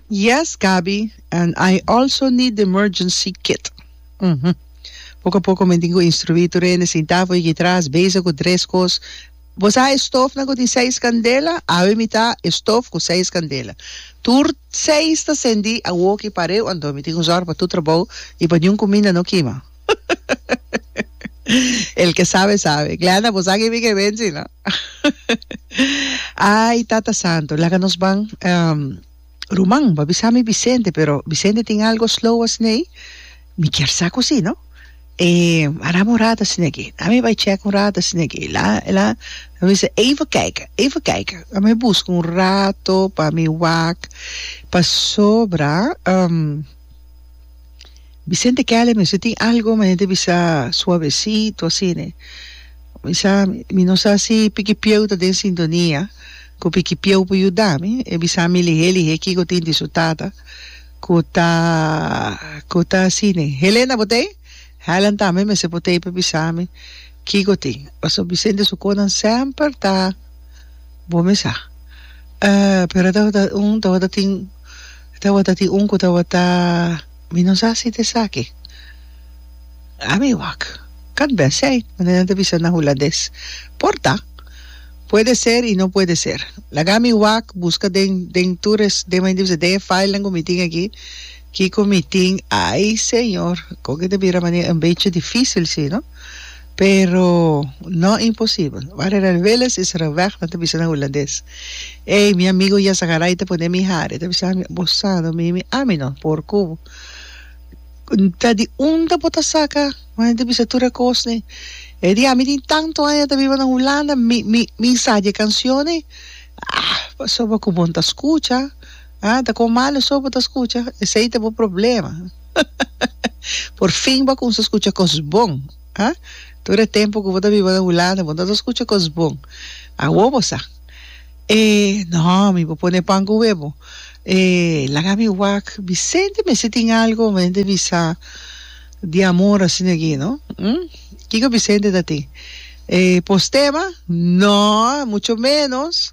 Yes Gaby and I also need the emergency kit uhmm poko a poko mi tin cu instrui tur hende sinta fu yeki tras bezig cu tres cos bo sa e stofnan cu tin seis candela awe mi ta e stof cu seis candela tur seis ta cendi awoki pareu anto mi tin cu zorg pa tur trabou y pa niun cuminda no kima. El ke sabe sabe. Glenda, bo sa kibi ke bensi, no? Ay, Tata Santo, laga nos ban. Um, ruman, bo a bisa mi Vicente, pero Vicente tin algo slow asnei. Mi kier sa ku si, no? E, a dame un rat asne aki. Laat mi bai check un rat asne aki. La, la, a bisa, even kijken, even kijken. Laat mi buska un rato pa mi wak. Pasobra, um, Vicente Kele mester tin algo ma hende bisa suavecito asine mi sa mi no sa si pikipieu ta den sintonia ku pikipieu por yuda mi e bisa mi lihe lihe kiko tin di su tata ku ta ku ta asine Helen a potei Helen tambe mester potei pa bisa mi kiko tin paso Vicente su konan semper ta bo me sa pero tabata un tabata tin Tabata tin un cu tabata Mi no sa si ta esaki a mi wak Kan bese ei Manda nan ta bisa na Hulandes Por ta Puede ser y no puede ser Laga mi wak Busca den den tur es den men di bisa den e filenan cu mi tin aki Kico mi tin Ay Señor Con ke ta bira manera un bechi dificil si no. Pero no imposibel. Ware Rel Willis is reweg nan ta bisa na Hullandes, Ey, mi amigo Jan Zagarai ta pone mi hari. E ta bisa ami, Bo sa no mi? Mi ami no, por cu bo. Ta di unda bo ta saca mane di bisa tur e cos ne? E di, Ami tin tanto aña ta biba na Hullanda, mi, mi, mi sa dje cancionnan. Ah, pasobra cu bo no ta scucha. Ah, ta kon malo so bo ta skucha? Esei ta bo problema. Por fin bo a kumsa skucha kos bon, ah? Tur e tempu ku bo ta biba na Hulanda bo no ta skucha kos bon. Awor bo sa. E, no, mi por pone pan ku webo. E, laga mi wak. Bisente mester tin algu pa mi hende bisa di amor asina aki, no? Hm? Kiko Bisente ta tin? E, postema? No, mucho menos.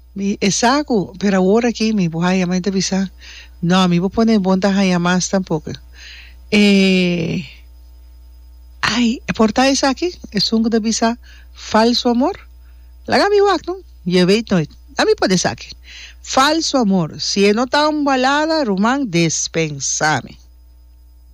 Mi, Esaku, pero awor aki mi bo haya mai ta bisa, No, mi bo pone bo ta haya mas tampoco. E, Ay, e por ta esaki, esun cu ta bisa, Falso amor? Laga mi wak no, je weet nooit. A mi por esaki. Falso amor, si e no ta un balada, ruman, despensa mi.